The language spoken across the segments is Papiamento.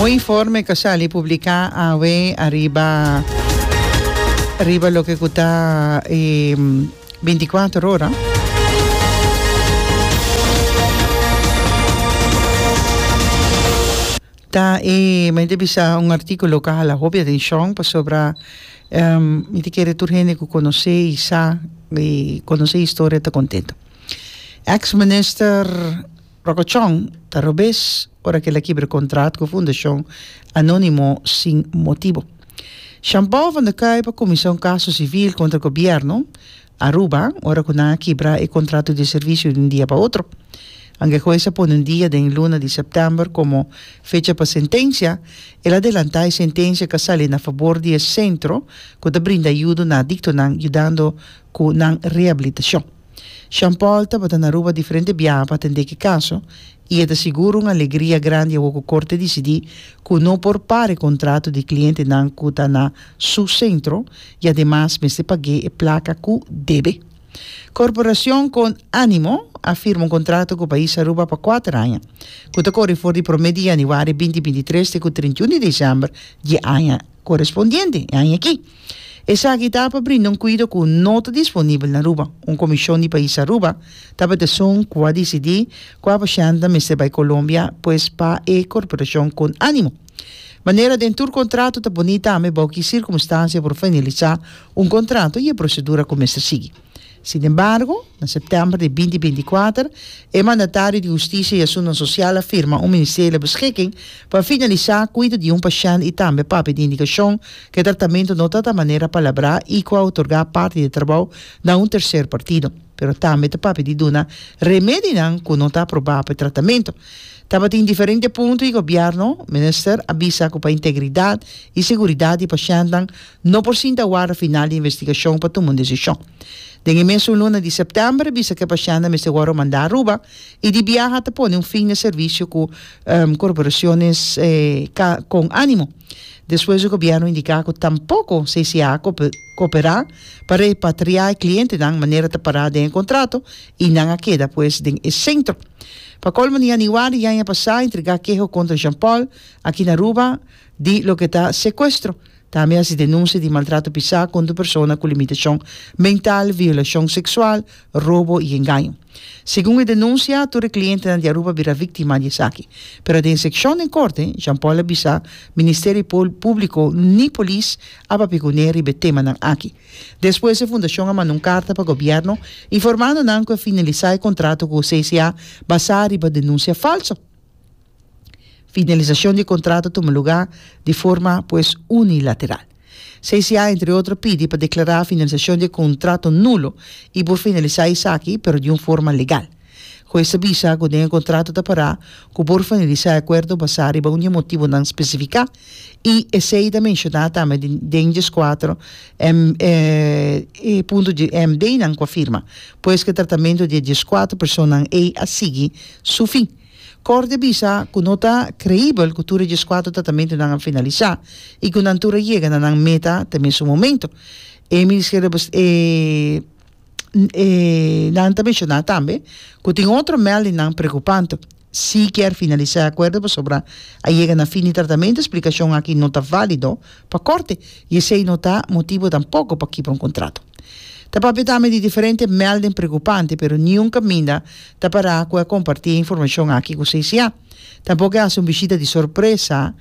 Un informe cu a sali publica awe ariba riba loke cu ta e binticuater ora ta e men ta bisa un articulo cu a hala hopi atencion pasobra mi ta kere tur hende cu conoce y sa y conoce historia ta contento ex minister Rokochon ta robes ora ke el a kibra kontrat ku Fundashon Anónimo sin motibu. Shan Paul van der Kuy pa kuminsá un kaso sivil kontra gobièrnu Aruba ora ku nan a kibra e kontratu di servisio di un dia pa otro. Anke hues a pone un dia den e luna di sèptèmber komo fecha pa sentensia, el a adelantá e sentensia ku a sali na fabor di e sentro ku ta brinda yudo na adiktonan yudando ku nan rehabilitashon. Sean Paul tabata na Aruba diferente biaha pa atendé ki kaso i e ta sigur un alegria grandi awor ku Korte disidí ku no por para e kontrato di klientenan ku ta na su sentro i ademas mester pag'é e plaka ku debe. Korporashon Con Animo a firma un kontrato ku pais Aruba pa kuater aña, ku ta kore for di promé di yanüari binti binti tres te ku trinta i un di desèmber di e aña korespondiente, e aña akí. Esaki ta pa brinda un kuido ku no ta disponibel na Aruba. Un komishon di pais Aruba ta pa tesun kua disidí kua pashantenan mester bai Kolombia pues pa e korporashon kon ánimo. Manera den tur kontrato ta poní tambe bou ki sirkumstansia por finalisá un kontrato i e prosedura ku mester sigui. Sin embargo, na septèmber di binti binti kuater, e mandatario di Hustisia i Asuntonan Sosial a firma un Ministerio di Beskiking pa finalisá kuido di un pashènt i tambe papia di indikashon ku e tratamentu no ta ta manera palabrá i ku a otorgá parti di e trabou na un terser partido, pero tambe ta papia di duna remedinan ku no ta aprobá pa e tratamentu. Tabatin diferente punto i Gobièrnu, Minister, a bisa ku pa integridat i seguridat di pashèntnan, No por sinta warda final di investigashon pa tuma un desishon. Den e mes un luna di sèptèmber a bisa ku e pashiannan mester wòru mandá Aruba i di biaha ta pone un fin na e servisio ku Corporaciones con Ánimo despues di gobièrnu indiká ku tampoko CCA a koperá pa repatriá e klientenan manera ta pará den e kontrato i nan a keda pues den e sentro. Pa kolmo na yanüari di aña pasá a entregá keho kontra Jean-Paul aki na Aruba di loke ta sekuestro. Tambe hasi denunsia di maltrato pisá kontra persona ku limitashon mental, violashon seksual, robo i engaño. Segun e denunsia, tur e klientenan di Aruba bira víktima di esaki. Pero den sekshon den korte, Jean Paul a bisa Ministerio Públiko ni polis a papia ku ne riba e temanan aki. Despues e fundashon a manda un karta pa gobièrnu informando nan ku e finalisá e kontrato ku CCA basá riba denunsia falso. Finalisacion di contrato tuma lugar di forma pues unilateral. CCA entre otro pidi pa declara finalisacion di e contrato nulo y por finalisa esaki pero di un forma legal. Juez ta bisa cu den e contrato ta para cu por finalisa e acuerdo basa riba un di e motibonan specifica y esey ta menciona tambe den diescuatro punto di e MDnan cu a firma. Pues cu e tratamento di e diescuatro personanan ey a sigui su fin. Corte bisa cu no ta creibel cu tur e dieskuater tratamentonan a finalisa y cu nan tur a yega na nan meta te mesun momento. E Ministerio de Bes e nan ta menciona tambe cu tin otro meldingnan preocupante si kier finalisa e acuerdo pasobra a yega na fin di tratamento. Explicacion aki no ta valido. pa kòrte i esei no ta motibu tampoko pa kipa un kontrato. Ta papia tambe di diferente mèlding preokupante, pero niun kaminda ta pará ku e kompartí e informashon aki ku CCA. Tampoko e hasi un bishita di sorpresa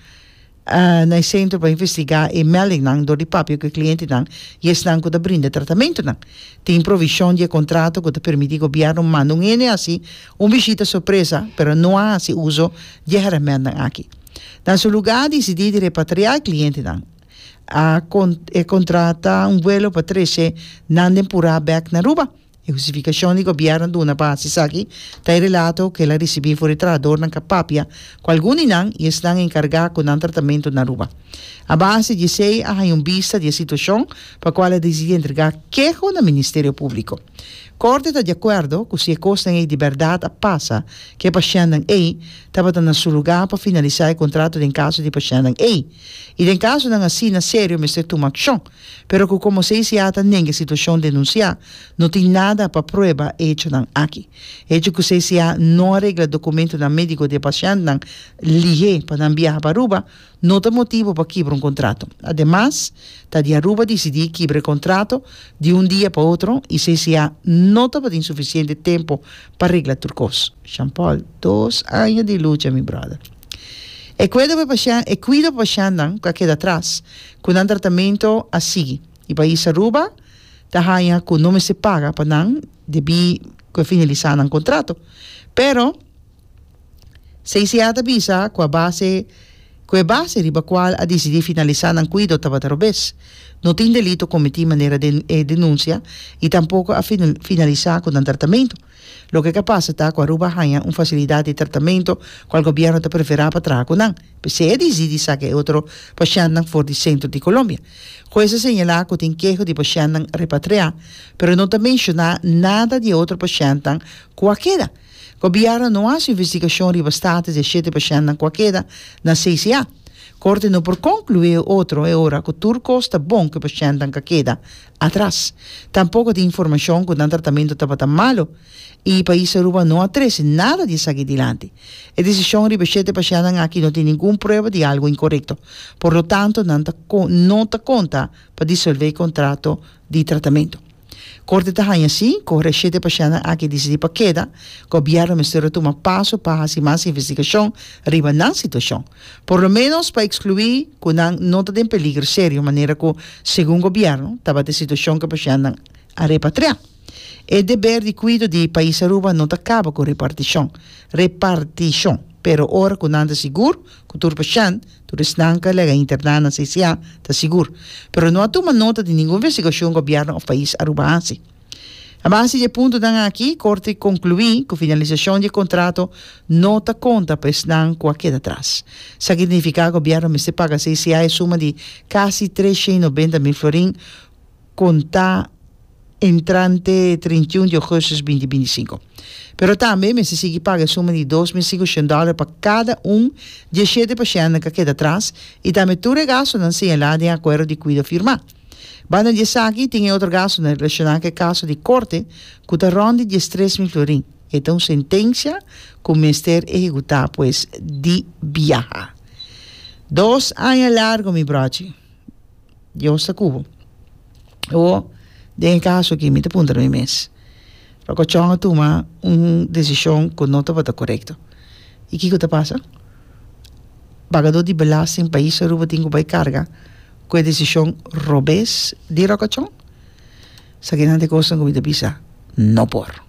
na e sentro pa investigá e mèldingnan dor di papia ku e klientenan i esnan ku ta brinda tratamentunan. Tin provishon di e kontrato ku ta permití gobièrnu manda un hende hasi un bishita sorpresa, pero no a hasi uso di e hèrèmentnan aki. Na su lugá a disidí di repatriá e klientenan. A con, e kontrata un vuelo pa treshe nan den purá bèk na Aruba. E hustifikashon di gobièrnu a duna pa hasi esaki ta e relato ku el a risibí for e trahadornan ka papia ku algun di nan i esnan a enkargá ku nan tratamentu na Aruba. A base di esei a haña un bista di e situashon pa kual a disidí entregá keho na Ministerio Públiko. Corte ta di acuerdo cu si e cosnan ey di berdad a pasa cu e pashentnan ey, tabata na su lugar pa finalisa e contrato den caso di pashentnan ey. Y den casonan asina serio mester tuma accion, pero cu como CICA ta nega e situacion denuncia, no tin nada pa prueba e hechonan aki. E hecho cu CICA no a regla documentonan medico di e pashentnan lihe pa nan biaha pa Aruba, No ta motibu pa kibra un kontrato. Ademas, ta di Aruba disidí kibra e kontrato di un dia pa otro i CCA no tabatin sufisiente tempu pa regla tur kos. Jean Paul, Dos aña di lucha, mi bròder. E kuido pa pashen, e kuido pa pashennan ku a keda atras, ku nan tratamentu a sigui. E pais Aruba ta haña ku no mester paga pa nan debí ku a finalisá nan kontrato. Pero. CCA ta bisa cu a base cu e base riba cual a dicidi finalisa nan cuido tabata robes. No tin delito cometi manera den e denuncia y tampoco a finalisa cu nan tratamento. Loke ca pasa ta cu Aruba a haya un facilidad di tratamento cual gobierno ta prefera pa traha cu nan, p'esey a dicidi saca e otro pashentnan for di centro di Colombia. Hues a señala cu tin keho di pashentnan repatria, pero no ta menciona nada di e otro pashentnan cu a keda. Gobièrnu no hasi investigashon riba status di e shete pashèntnan ku a keda na CCA. Korte no por konkluí e otro e ora ku tur kos ta bon ku e pashèntnan ka keda atras. Tampoko tin informashon ku nan tratamentu tabata malu i pais Aruba no a trese nada di esaki dilanti. E desishon riba e shete pashèntnan aki no tin ningun prueba di algu inkorekto. Por lo tanto nan ta no ta konta pa disolvé kontrato di tratamentu. Corte ta haña si cu e shete pacientnan aki dicidi pa keda, gobierno mester a tuma paso pa haci mas investigacion riba nan situacion, por lo menos pa exclui cu nan no ta den peligro serio manera cu segun gobierno tabata e situacion cu e pacientnan a repatria. E deber di cuido di Pais Aruba no ta caba cu reparticion, reparticion, pero ora cu nan ta sigur cu tur pacient Tur esnan ka lèga interná na CCA, ta sigur. Pero no a tuma nota di ningun vestigashion gobièrnu òf pais Aruba a hasi. A base di e puntonan aki, Korte konkluí ku finalisashon di e kontrato no ta konta pa esnan ku a keda tras. Sa ke nifiká gobièrnu mester paga CCA e suma di kasi tres shei nobenta mil florin, konta entrante treinta i un di ogosto binti binti sinku. Pero tambe e mester sigui paga e suma di dos mil singushion dòler pa kada un di e shete pashèntnan ku a keda atras i tambe tur e gastunan señalá den e akuerdo di kuido firmá. Banda di esaki tin e otro gastunan relashoná ku e kaso di korte ku ta rònt di diestres mil florin. E ta un sentensia ku mester ehekutá pues di biaha. Dos aña largu mi bròchi. Dios ta cu bo. O den e caso aki mi ta puntra mi mes, pa cochon a tuma un decision cu no tabata corecto y kico ta pasa? Pagador di belasting pais Aruba tin cu bay carga cu e decision robes di rocochon? Sa kinan ta e cosnan cu mi ta bisa, no por.